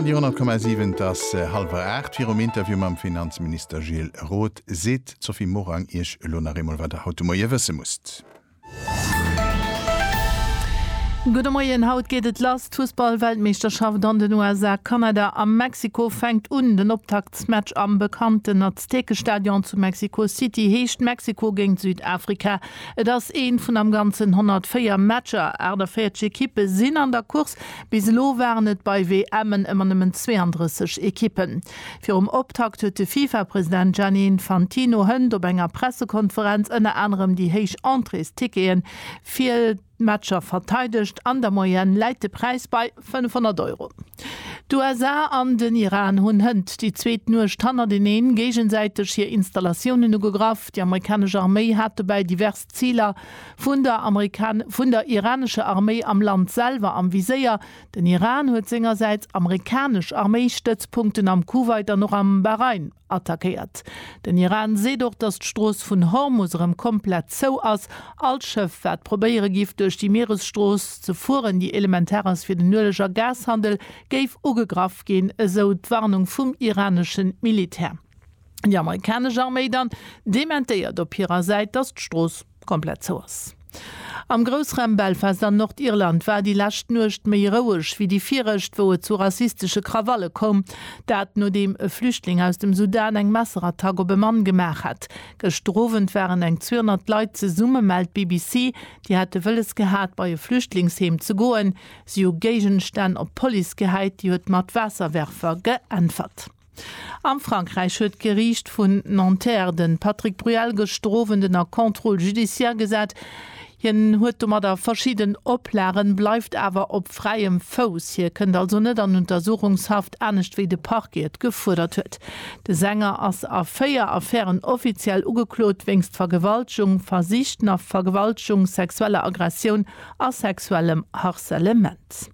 Radio 10,7 Et ass hallwer aacht. Virum Interview mam Finanzminister Gilles Roth seet d'Sophie Morang Iech elo nach eemol, wat Der haut de Moie wësse musst. Gudde Moien, Haut geet et lass, d'Fussball-Weltmeeschterschaft an den USA, Kanada a Mexiko fänkt un. Den Optaktsmatch am bekannten Aztekestadion zu Mexiko City heescht Mexiko géint Südafrika. Et ass een vun am ganzen 104 Matcher. 48 Ekippe sinn an der Course. Bis elo waren et bei WMen ëmmer nëmmen 32 Ekippen. Virum Optakt huet de Fifa-President Gianni Infantino hënt op enger Pressekonferenz ënner anerem déi héich Entréestickete fir d'Matcher verteidegt. An der Moyenne läit de Präis bei 500 Euro. D'USA an den Iran hunn hënt déi zweet Nuecht hannerteneen géigesäiteg hir Installatiounen ugegraff. Déi amerikanesch Arméi hat dobäi divers Ziler vun der vun der iranescher Arméi am Land selwer am Viséier. Den Iran huet sengersäits amerikanesch Arméistëtzpunkten am Kuwait an och am Bahrain attackéiert. Den Iran seet och, datt d'Strooss vun Hormus erëm komplett zou ass. All Schëff, wat probéiere giff, duerch déi Mieresstrooss ze fueren, déi elementar ass fir den Ueleg a Gashandel, géif ugegraff ginn, esou d'Warnung vum iraneschen Militär. Déi amerikanesch Arméi dann dementéiert op hirer Säit, datt d'Strooss komplett zou ass. Am Groussraum Belfast an Nordirland war déi lescht Nuecht méi roueg wéi déi virecht, wou et zu rassistesche Krawalle koum. Dat nodeem e Flüchtling aus dem Sudan eng Messerattack op e Mann gemaach hat. Gëschter Owend waren eng 200 Leit zesumme, mellt d'BBC. Déi hätte wëlles gehat, bei e Flüchtlingsheem ze goen. Si hu Géigenstänn op d'Police gehäit, déi huet mat Waasserwerfer geäntwert. Am Frankräich huet d'Geriicht vun Nanterre de Patrick Bruel gestrof en den a Contrôle judiciaire gesat. Hien huet domadder verschidden Oplagen, bleift awer op fräiem Fouss. Hie kënnt also net an Untersuchungshaft, anescht wéi de Parquet et gefuerdert huet. De Sänger ass a véier Affären offiziell ugeklot, wéinst Vergewaltegung, versichter Vergewaltegung, sexueller Aggressioun a sexuellem Harcelement.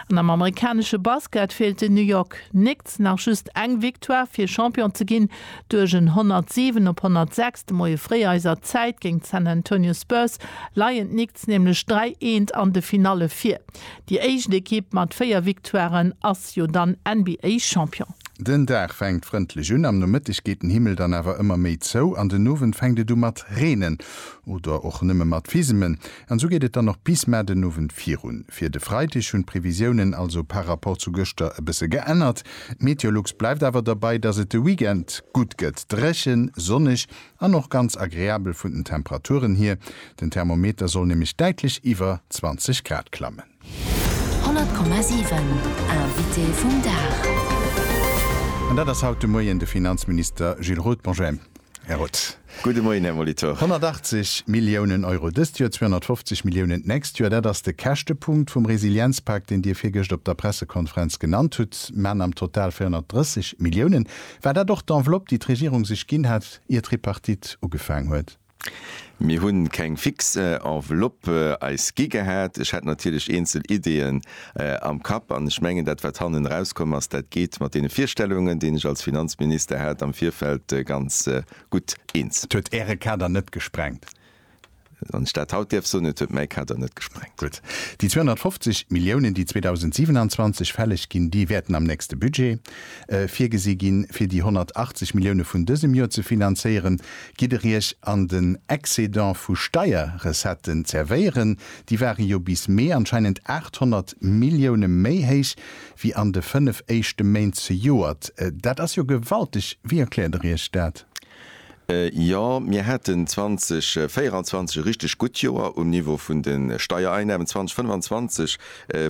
An am amerikanesche Basket feelt den New York Knicks nach just eng Victoire fir Champion ze ginn. Duerch en 107 op 106 de Moie fréi eiser Zäit géint d'San Antonio Spurs leien d'Knicks nämlech 3 eent an de Finalle vir. Déi éischt Ekipp mat 4 Victoiren ass jo dann NBA Champion. Den Dag fänkt frëndlech un, am Nomëtteg geet den Himmel dann awer ëmmer méi zou an den Owend fänkt et u mat reenen oder och nëmme mat Fisemen. An esou geet et dann och bis mar den Owend virun. Fir de Freideg hunn d'Previsiounen also par Rapport zu gëschter e bësse geännert. D'Meteolux bleift awer derbei, dass et de Weekend gutt gëtt, dréchen, sonneg an och ganz agreabel vun den Temperaturen hier. Den Thermometer soll nämlech däitlech iwwer 20 Grad klammen. 100,7 Invité vum Dag. An dat ass haut de Moien de Finanzminister Gilles Roth. Bonjour, Här Roth. Gudde Moien, Här Molitor. 180 Milliounen Euro dëst Joer, 250 Milliounen d'nächst Joer, dat ass de Käschtepunkt vum Resilienzpak, deen Dir virgëscht op der Pressekonferenz genannt hutt, mä am Total 430 Milliounen. War dat och d'Enveloppe, déi d'Regierung sech ginn hat, ier d'Tripartite ugefaang huet? Mir hunn keng fix Enveloppe eis gi gehat. Ech hätt natierlech eenzel Ideeën am Kapp an ech mengen dat wat hannen erauskomm ass, dat geet mat deene Virstellungen deen ech als Finanzminister hat am Virfeld ganz gutt eens. Et huet Äre Kader net gesprengt. Wann ech dat haut däerf soen, et huet mäi Kader net gesprengt. Gutt. Déi 250 Milliounen déi 2027 fälleg ginn, déi wäerten am nächste Budget virgesi ginn, fir déi 180 Millioune vun dësem Joer ze finanzéieren, gitt Der Iech an den Excédent vu Steierrecetten zervéieren. Déi ware jo bis Mee anscheinend 800 Millioune méi héich wéi an de fënnef éischte Méint zejoert. Dat ass jo gewalteg. Wéi erkläert Der Iech dat? Jo, mir haten 2024 e richteg gutt Joer um Niveau vun de Steiereinnamen. 2025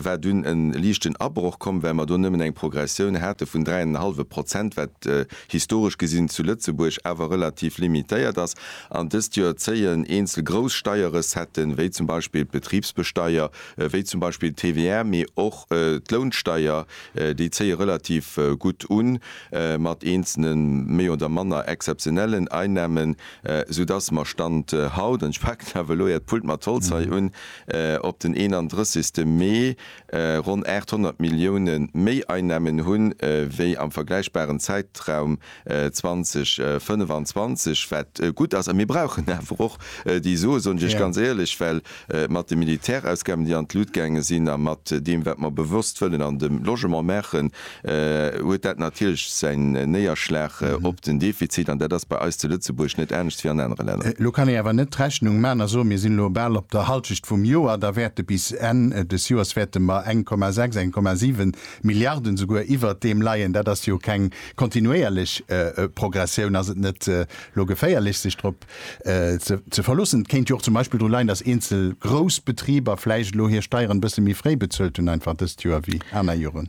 war dunn e liichten Abroch komm, well mer do nëmmen eng Progressioun hate vun dräi an en hallwe Prozent, wat historesch gesinn zu Lëtzebuerg awer relativ limitéiert ass. An dëst Joer zéien eenzel grouss Steierrecetten, wéi zum Beispill d'Betribsbesteier, wéi zum Beispill d'TVR, mee och d'Lounsteier, déi zéie relativ gutt un. mat eenzelne méi oder manner exzeptionellen Einnahmen, sou dass mer Stand haut, an ech paken awer elo Äert Pult mat Holz hei un, op den 31. Mee ronn 800 Millioune méi Einnahmen hu wéi am vergläichbaren Zäitraum 2025, wat gutt ass. A mir brauchen awer och déi Sue, soen ech Iech ganz éierlech, well mat de Militärausgaben, déi an d'Lut gaange sinn, a mat deem, wat mer bewosst wëllen an dem Logement maachen, huet dat natierlech säin Néierschlag op den Defizit. An dat ass bei eis zu Lëtzebuerg net anescht wéi an anere Länner. Elo kann ee awer net d'Rechnung maachen a soen, mir sinn elo bal op der Hallschecht vum Joer, da wäerte bis Enn des Joers wäerte mer eng Komma sechs, eng Komma siwe Milliarden esouguer iwwert deem leien. Dat ass jo keng kontinuéierlech Progressioun. Ass et net elo geféierlech, sech drop ze verloossen. Et kéint jo och zum Beispill dru leien, datt eenzel grouss Betriber vläicht elo hir Steieren e bësse méi fréi bezuelt hunn einfach dëst Joer wéi aner Joren.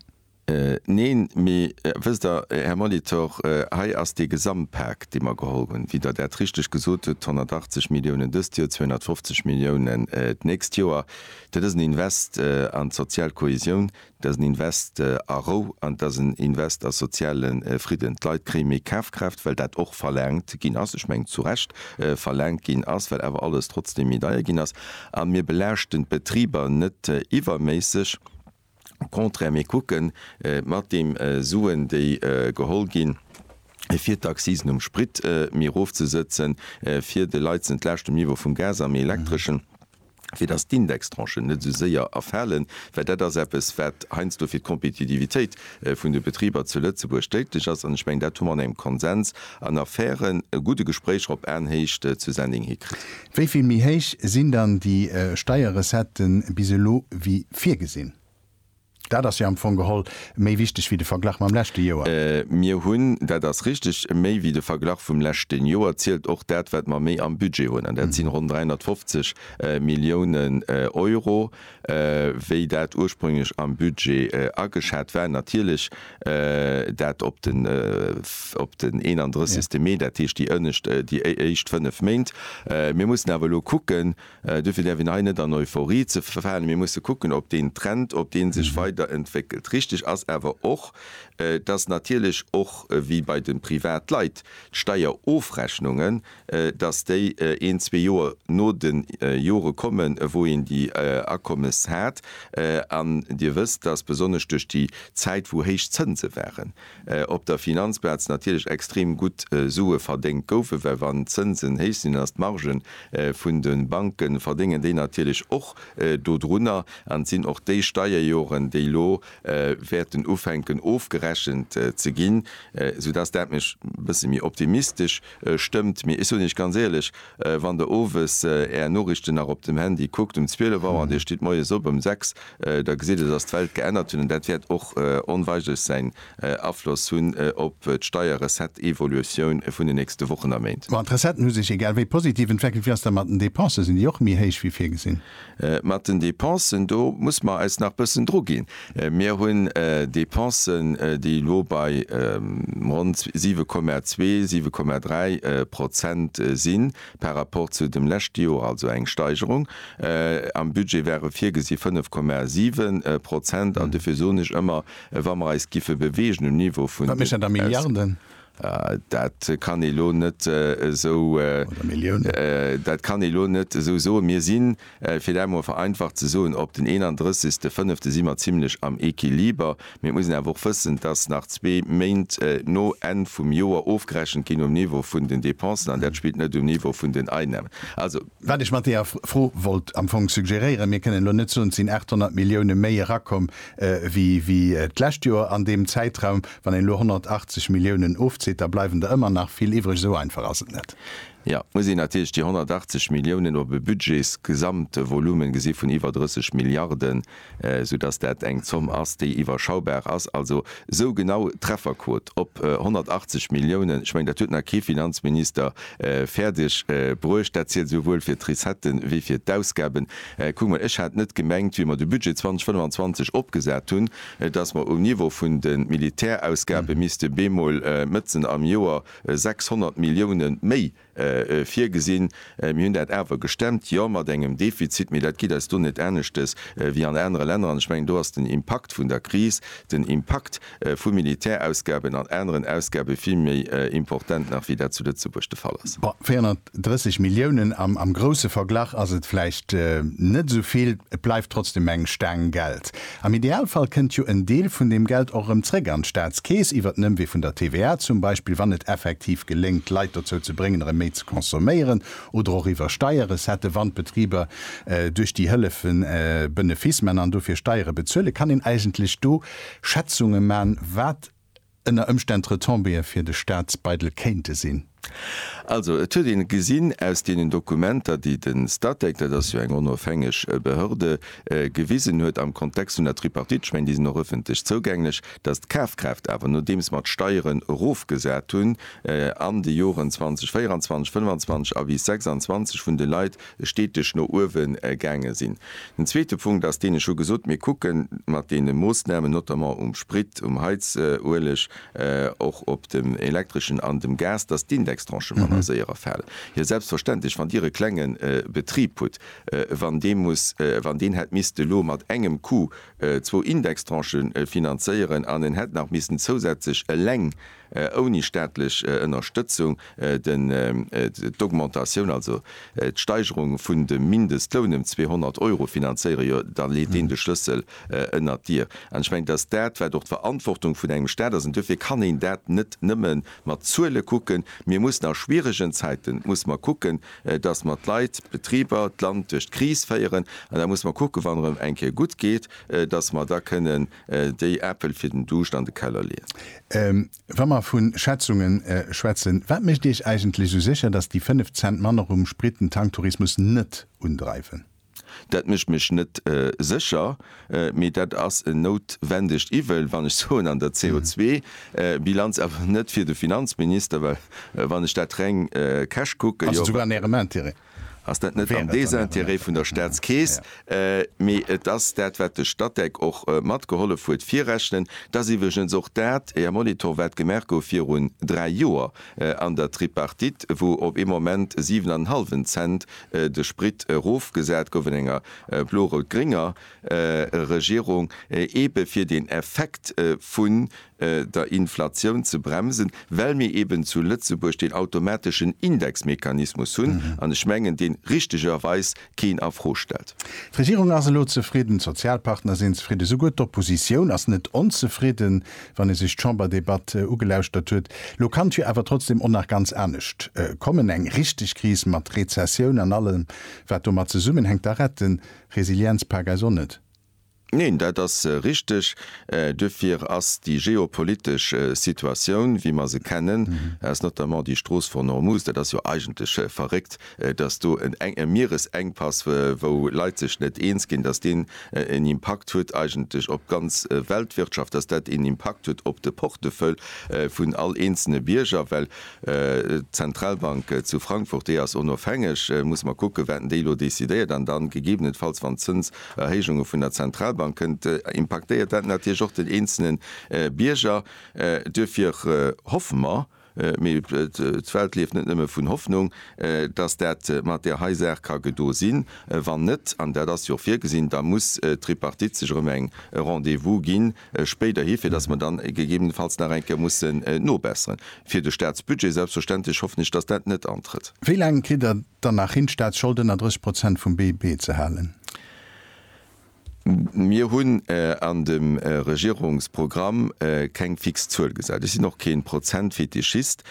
Neen, mee wësst Der, Här Molitor, hei ass dee Gesamtpak, dee mer geholl hunn, wéi Der dat richteg gesot hutt, 180 Milliounen dëst Joer, 250 Milliounen d'nächst Joer. Dat ass en Invest an d'sozial Kohäsioun, Et ass en Invest a Rou an et ass en Invest a soziale Fridden. D'Leit kréie méi Kafkraaft, well dat och verlaangt ginn ass, ech mengen zu Recht verlaangt ginn ass, well awer alles trotzdeem méi deier ginn ass. A mir belaaschten d'Betriber net iwwerméisseg, au contraire, mir kucke mat deem Suen, déi geholl ginn, fir d'Accisen um Sprit méi erofzesëtzen, fir de Leit ze entlaaschten um Niveau vum Gas, am Elektreschen. fir datt d'Indextranchen net esou séier erfalen, well dat ass eppes, wat heiansdo fir d'Kompetitivitéit vun de Betriber zu Lëtzebuerg déidlech ass. An ech mengen, dat hu mer an engem Konsens an a fairen, gudde Gespréicher op Aenhéicht zu Sending hikritt. Wéi vill méi héich sinn dann déi Steierrecetten bis elo wéi virgesinn? Dat ass jo am Fong geholl méi wichteg wéi de Verglach mam leschte Joer. Mir hunn, dat ass richtig, méi wéi de Verglach vum leschten Joer zielt och dat, wat mer méi am Budget hunn, an dat sinn ronn 350 Milliounen Euro, wéi dat ursprünglech am Budget ageschat war. Natierlech dat op den 31. Mee, dat heescht déi éischt fënnef Méint. Mir mussen awer elo kucken, Duerfir däerf een hei net an Euphorie ze verfalen. Mir musse kucken, ob deen Trend, ob dee sech weiderentwéckelt. Richtig ass awer och, dass natierlech och wéi bei de Privatleit d'Steierofrechnungen, dass déi een, zwee Joer no de Jore kommen, wou een déi Akommes hat. An Dir wësst, dass besonnesch duerch déi Zäit, wou héich Zënse waren, op der Finanzplaz natierlech extrem gutt Sue verdéngt goufen, well wann d'Zënsen héich sinn, ass d'Marge vun de Banke verdéngen déi natierlech och dodrunner. An et sinn och déi Steierjoren, déi elo wäerten ufänken ofgerechent ze ginn, soudass dat mech e bësse méi optimistesch Stëmmt, mee ech soen Iech ganz éierlech, wann Der owes Är Noriichten nach op dem Handy kuckt um 12 Auer an Dir stitt moies op ëm 6, da gesitt Der, dass d'Welt geännert huet an dat wäert och onweigerlech säin Afloss hunn op d'Steierrecetteevoluoioun vun den nächste Wochen a Méint. Bon, d'Recetten hu sech egal wéi positiv entweckelt. Wéi ass dat mat den Dépensen? Sinn déi och méi héich wéi virgesinn? Mat den Dépensen, do muss mer eis nach bëssen druginn. Mir hunn Dépensen, déi elo bei ronn 7,2, 7,3 Prozent si par rapport zu dem leschte Joer, also eng Steigerung. Am Budget ware virgesi 5,7 Prozent. An dofir soen ech ëmmer, wa mer eis giffe bewegen um Niveau vun den Aus. Dat kann ee lo net esou, dat kann ee lo net esou soen. Mir si, fir dat emol vereinfacht ze soen, op den 31. Fënnefte si mer zimlech am Equiliber. Mee et muss een awer och wëssen, dass nach zwee Méint no Enn vum Joer ofgerechent ginn um Niveau vun den Dépensen, an dat spillt net um Niveau vun den Einnahmen. Wat ech mat deeër Fro wollt am Fong suggeréieren, mir kënnen elo net soen, et sinn 800 Millioune méi erakomm wéi d'lescht Joer an deem Zäitraum. Wann een elo 180 Milliounen ofzitt, da bleiwen der ëmmer nach vill iwwreg. Esou einfach ass et net. Jo, et muss een natierlech déi 180 Milliounen op e Budgetsgesamtvolume gesi vun iwwer 30 Milliarden. soudass dat eng Zomm ass, déi iwwerschaubar ass, also esou genau Trefferquot op 180 Milliounen. Ech mengen, dat huet nach kee Finanzminister fäerdeg bruecht. Dat zielt esouwuel fir d'Recettë wéi fir d'Ausgaben. Kuck emol, ech hat net gemengt, wéi mer de Budget 2025 opgesat hunn, dass mer um Niveau vun de Militärausgabe misste bemol mëtzen am Joer 600 Milliounen méi virgesinn. Mir hunn dat awer gestemmt, jo mat engem Defizit, mee dat geet eis do net aneschtes wéi an anere Länner. An ech mengen, do ass den Impakt vun der Kris, den Impakt vu Militärausgaben an aneren Ausgabe vill méi important nach wéi dat zu Lëtzebuerg de Fall ass. Bon, 430 Milliounen am grousse Verglach ass et vläicht net esou vill, et bleift trotzdeem eng Staang Geld. Am Idealfall kënnt jo en Deel vun deem Geld och erëm zréck an d'Staatskeess iwwert den Ëmwee vun der TVA zum Beispill, wann et effektiv geléngt d'Leit dozou ze bréngen erëm méi ze consomméieren, oder och iwwer Steierrecetten, wann d'Betriber duerch déi Hëllefen Benefice man an dofir Steiere bezuelen, kann een eigentlech do Schätzunge man, wat. ënner Ëmstänn Retombéeë fir de Staatsbeidel kéinte sinn. Also et huet ee gesinn aus deenen Dokumenter, déi de Statec, dat ass jo eng onofhängeg Behörde, gewisen huet am Kontext vun der Tripartite, ech mengen déi sinn och ëffentlech zougänglech, datt d'Kafkraaft awer, nodeems mer d'Steieren erofgesat hunn an de Joren 2024, 2025 a bis 2026, vun de Leit steeteg no uewe gaange sinn. Den zweete Punkt ass deen, ech hu gesot, mir kucke mat deene Moossnamen, notamment um Sprit, um Heizueleg, och op dem Elektreschen an dem Gas, datt d'Indextranchë manner séier erfalen. Jo selbstverständlech, wann Dir e klenge Betrib hutt, wann dee muss, wann deen hätt misste elo mat engem Coup zwou Indextranchë finanzéieren an en hätt nach missen zousätzlech eleng, ouni staatlech Ënnerstëtzung, d'Augmentatioun, also d'Steigerung vun dem Mindestloun ëm 200 Euro finanzéieren, jo da leet een de Schlëssel ënnert d'Dier. An ech mengen, et ass dat, wat och d'Verantwortung vun engem Staat ass. An duerfir kann een dat net nëmme mat Zuele kucken. Mir mussen a schwieregen Zäiten, musse mer kucken, datt mer d'Leit, d'Betriber, d'Land duerch d'Kris féieren. An da musse mer kucken, wann erëm eng Kéier gutt geet, datt mer da kënnen Déi Äppel fir den Duuscht an de Keller leeën. Wa mer vun Schätzungen schwätzen, wat mécht Iech eigentlech esou sécher, dass déi 5 Cent manner rum Sprit den Tanktourismus net undreiwen? Dat mécht mech net sécher, mee dat ass en noutwendegt Iwwel, wann ech soen, an der CO2-Bilanz, awer net fir de Finanzminister, well wann ech dat reng cash kucken, jo. Ass et souguer an Ärem Intérêt? Ass dat net am Désintérêt vun der Staatskeess? Mee et ass dat, wat de Statec och mat gehollef huet virrechnen. Et ass iwwregens och dat, Här Molitor, wat gemaach gouf virun dräi Joer an der Tripartite, wou op ee Moment siwen an en hallwen Cent de Sprit erofgesat gouf an enger blo-rout-grénger Regierung, eebe fir den Effekt vun der Inflatioun ze bremsen, well mir eben zu Lëtzebuerg deen automateschen Indexmechanismus hunn, an ech mengen, dee richtegerweis keen a Fro stellt. D'Regierung ass elo zefridden, d'Sozialpartner sinn zefridden, esouguer d'Oppositioun ass net onzefridden, wann ee sech d'Chamberdebatt ugelauschtert huet. Elo kann d'Vue awer trotzdem och nach ganz anescht kommen, eng richteg Kris mat Rezessioun an allem, wat domat zesummenhänkt. Da rett de Resilienzpak eis och net. Neen, dat ass richteg. Duerfir ass déi geopolitesch Situatioun, wéi mer se kennen, aus notamment déi Strooss von Ormuz, dat ass jo eigentlech verréckt, dass do e Mieresengpass, wou Leit sech net eens ginn, dass deen en Impakt huet eigentlech op d'ganz Weltwirtschaft, dass dat een Impakt huet op de Portefeuille vun all eenzelne Bierger. Well d'Zentralbank zu Frankfurt, déi ass onofhängeg, muss mer kucken, wat déi elo decidéiert an dann gegebenenfalls, wann d'Zëns Erhéijunge vun der Zentralbank kënnt, impaktéiert dat natierlech och den eenzelne Bierger. Duerfir hoffe mer, mee d'Welt lieft net nëmme vun Hoffnung, datt dat mat där hei Saach ka gedo sinn. Wann net, an dat ass jo och virgesinn, da muss d'Tripartite sech erëm eng Rendez-vous ginn spéiderhi, fir datt mer dann gegebenenfalls nach eng Kéier mussen nobesseren, fir de Statsbudget selbstverständlech. Hoffen ech, datt dat net antrëtt. Wéi laang kritt Der dann nach hin, d'Staatsschold ënner 30 Prozent vum BIP ze halen. Mir hunn an dem Regierungsprogramm keng fix Zuel gesat. Ech sinn och kee Prozentfetischist.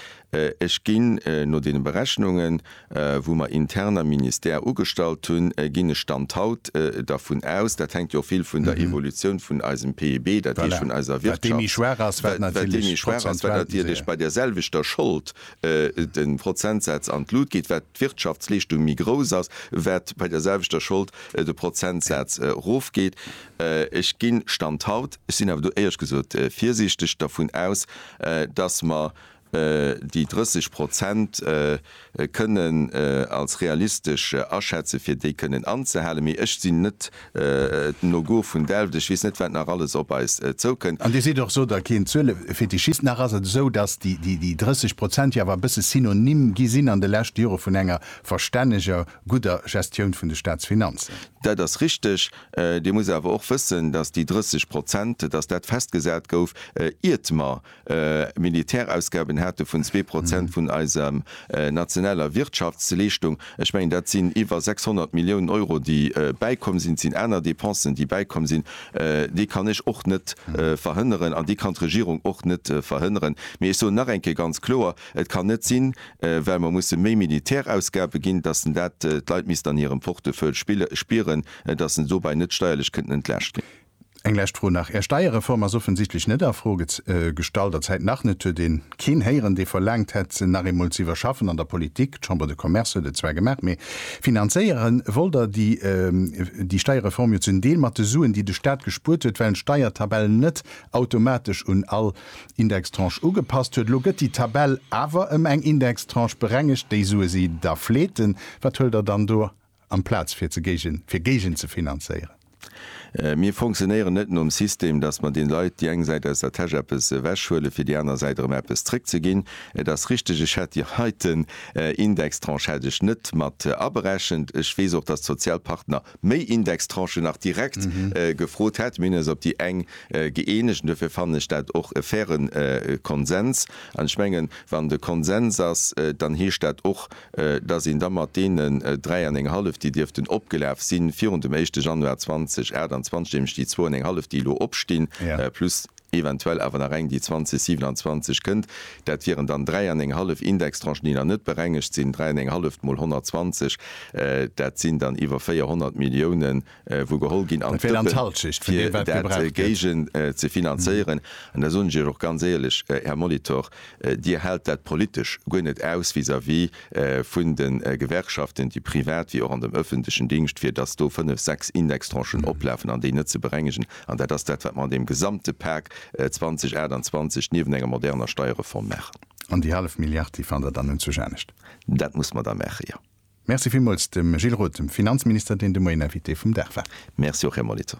Ech ginn no deene Berechnungen, wou mer intern am Ministère ugestallt hunn, ginn ech Stand haut dervun aus, dat hänkt jo och vill vun der Evolutioun vun eisem PIB, dat heescht vun eiser Wirtschaft, wat déi méi schwaach ass, wat natierlech bei där selwechter Schold de Prozentsaz an d'Lut geet, wat d'Wirtschaftsleeschtung méi grouss ass, wat bei der selwechter Schold de Prozentsaz erofgeet. Ech ginn, Stand haut, ech sinn awer do éierlech gesot virsiichteg, dervun aus, datt mer déi 30 Prozent kënnen als realistesch aschätzen, fir déi kënnen anzehalen. Mee ech sinn net den Logo vun Delft, ech weess net wat nach alles op eis zoukënn. An Dir sidd och, sot der, keen Zuelefetischist. Nach ass et esou, datt déi 30 Prozent jo awer e bësse Synonym gi sinn an de leschte Jore vun enger verstänneger, gudder Gestioun vun de Staatsfinanzen. Dat ass richteg. Dir musst awer och wëssen, datt déi 30 Prozent, datt dat festgesat gouf, iert mer Militärausgaben hate vun zwee Prozent vun eiser nationaler Wirtschaftsleeschtung. Ech mengen, dat sinn iwwer 600 Milliounen Euro, déi bäikomm sinn. Et sinn aner Dépensen, déi bäikomm sinn. Déi kann ech och net verhënneren an déi kann d'Regierung och net verhënneren. Mee ech soen nach eng Kéier ganz kloer, Et kann net sinn, well mer musse méi Militärausgabe ginn, dass en dat, d'Leit misst an hirem Portefeuille spieren, dass en dobäi net steierlech kënnten entlaascht ginn. Eng lescht Fro nach, Är Steierreform ass offensichtlech net a Fro gestallt, a Zäit nach net. Huet een keen héieren, dee verlaangt hätt, se nach eemol ze iwwerschaffen an der Politik? D'Chambre de Commerce huet et zwar gemaach, mee finanzéiere wollt Der déi Steierreform jo zum Deel mat de Suen, déi de Staat gespuert huet, well d'Steiertabell net automatesch un all Indextranche ugepasst huet. Elo gëtt déi Tabell awer ëm eng Indextranche berengegt, déi Sue si da fleeten. Wat huelt Der dann do Amplaz fir ze géigen, fir géigen ze finanzéieren. Mir fonctionnéieren net nom System, dass mer den Leit déi eng Säit aus der Täsch eppes ewechhuelen, fir déi aner Säit erëm eppes zréckzeginn. Et ass richteg, ech hätt Dir heiten Indextranche hätt ech net mat aberechent. Ech weess och, dass d'Sozialpartner méi Indextranchen nach direkt gefrot hätten. Mir hunn eis op déi eng gëeenegt an duerfir fannen ech dat och e fairen Konsens. An ech mengen, wann de Konsens ass, dann heescht dat och, dass een da mat deenen dräi an eng hallef, déi dierften opgelaf si virun dem éischte Januar 2028, nämlech déi zwou an eng hallef, déi elo opstinn, plus eventuell awer nach eng, déi 2027 kënnt, dat wieren dann dräi an eng hallef Indextranchen, déi nach net berengegt sinn, dräi an eng halleft mol 120, dat sinn dann iwwer 400 Milliounen, wou geholl ginn an d'Dëppen, fir dat géigend ze finanzéieren. An da soen ech Iech och ganz éierlech, Här Molitor, Dir haalt dat politesch guer net aus vis-à-vis vun de Gewerkschaften, déi privat wéi och an dem öffentlechen Dingscht, fir dass do fënnf, sechs Indextranchen oplafen an déi net ze berengegen. An dat ass dat, wat mer an deem gesamte Pak 2028 niewent enger moderner Steierreform maachen. An déi hallef Milliard, déi fannt Der dann un zu Janescht? Dat muss mer da maachen, jo. Merci villmools dem Gilles Roth, dem Finanzminister, deen de Moien Invité vum Dag war. Merci och, Här Molitor.